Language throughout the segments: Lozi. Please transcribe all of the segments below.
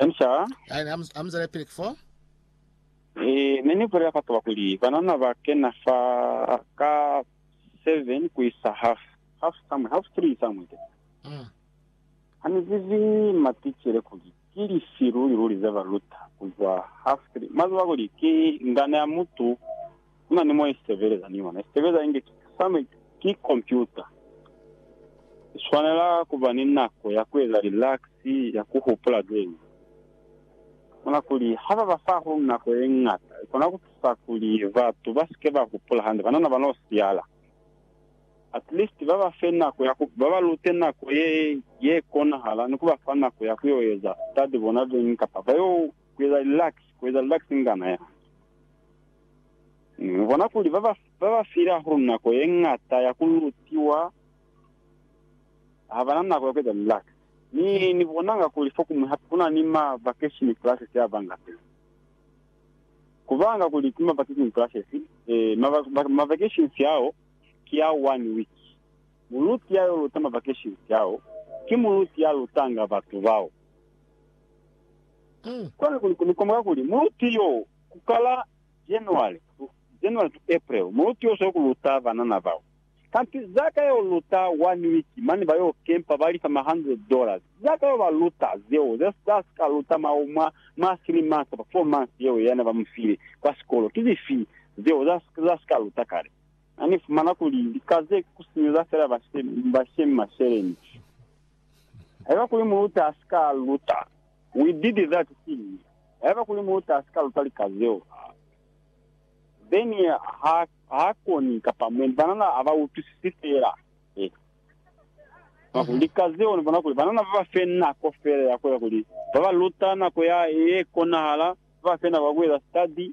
I'm sorry. Ai, ni amu- amuzele pili ki fo. Eh, ne ni bulela bataba kuli banana ba kena fa ka seven ku isa half. Half somewhere, half three somewhere there. Mm. Ha ni zibi maticele kuli ki lifi luli luli ze ba luta kuzwa half three. Mwa ziba kuli ki ngana ya mutu Ku na ni mo i sitebeleza ni yona. I sitebeleza inge ki same ki kompyuta. I swanela ku ba ni nako ya ku eza lilaksi, ya ku hupula ze ñwi. Ni bona kuli ha ba ba fa hahulu nako ye ñata, i kona ku tusa kuli batu ba si ke ba hupula hande, banana ba n'o siyala. At least ba ba fe nako ya ku, ba ba lute nako ye, ye konahala ni ku ba fa nako ya ku y'o eza study bona ze ñwi kapa ba y'o Kueza relax, kueza relax ngana ya. Mu bona kuli ba ba, ba ba file hahulu nako ye ngata ya ku lutiwa, ha bana nako ya kueza relax. Ni, ni bonanga kuli fokumwi hape kuna ni ma vacation classes a banga pili. Ku banga kuli ki ma vacation classes, eh, ma, ma, ma vacations ao ki a one week. Muluti ya yo luta ma vacations ao, ki muluti ya lutanga batu bao. Kwani ku komoka kuli muluti yo ku kala January January to April, muluti yo soko luta banana bao. Kanti za ka yo luta one week mane ba yo kempa ba lifa ma hundred dollars. Za ka yo ba luta zeo za za si ka luta mwa mwa mwa three months kapa four months yeo yana ba mu file kwa sikolo. Ki zifi zeo za za si ka luta kale? Ani fumana kuli lika ze ku sinyeza fela ba she ba shemi masheleni. Haiba kuli muluti a si ka luta, We did that thing, haiba kuli muluti a si ka luta lika zeo, then ha, ha koni, kapa mwendi banana ha ba utwisisi fela. Eh. Mwa ku, lika zeo, ni bona kuli banana ba ba fe nako fela ya ku eza kuli ba ba luta nako ya, ye konahala, ba ba fe nako ya ku eza study,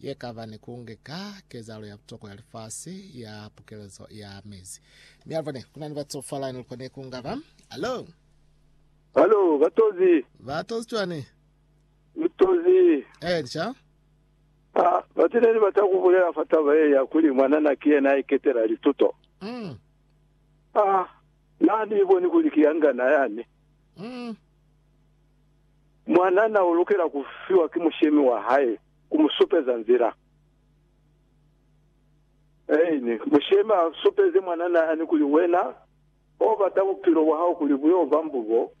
ye kaba ni ku nge ka kezahalo ya butokwa ya lifasi ya pukelezo ya mezi. Mi alivwa ne kuna ni batu falani lukwa ne ku ngaba. Alo! Alo, batozi! Batozi cwani? Lutozi! Eh, nca? Ah, batu ne ni bata ku bulela fa taba ye ya kuli mwanana ki yena iketela lituto. Mm. Ah, na ni iboni kuli ki yangana yani. Mm. Mwanana u lukela ku fiwa ki mushemi wa hae ku mu supeza nzila. Aine. Mushemi a supeze mwanana yani kuli, Wena o bata bupilo bwa hao kuli bu yo ba mbubo,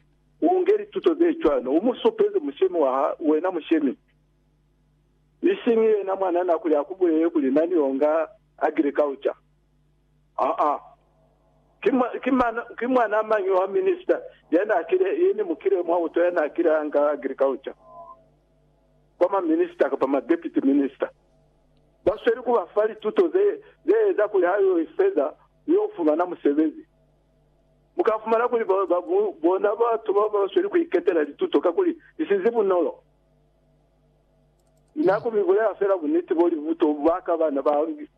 u nge lituto ze cwani. U mu supeze mushemi wa ha wena mushemi, isiñi yena mwanana kuli a ku bulele kuli, Na ni yo nga agriculture. Aa. Ki mwa, ki mana, ki mwanaa mañi wa minister ya n'a kile, ye ne mu kile mwa utwa ya n'a kile a nga agriculture kwa ma minister kapa ma deputy minister? Ba sweli ku ba fa lituto ze, ze eza kuli ha yo iseza ku yo fumana musebezi. Mu ka fumana kuli ba, ba, mu, bona batu bao ba sweli ku iketela lituto kakuli li si zi bunolo. Na ku mi bulela fela buniti bo li buto bwa ka bana ba,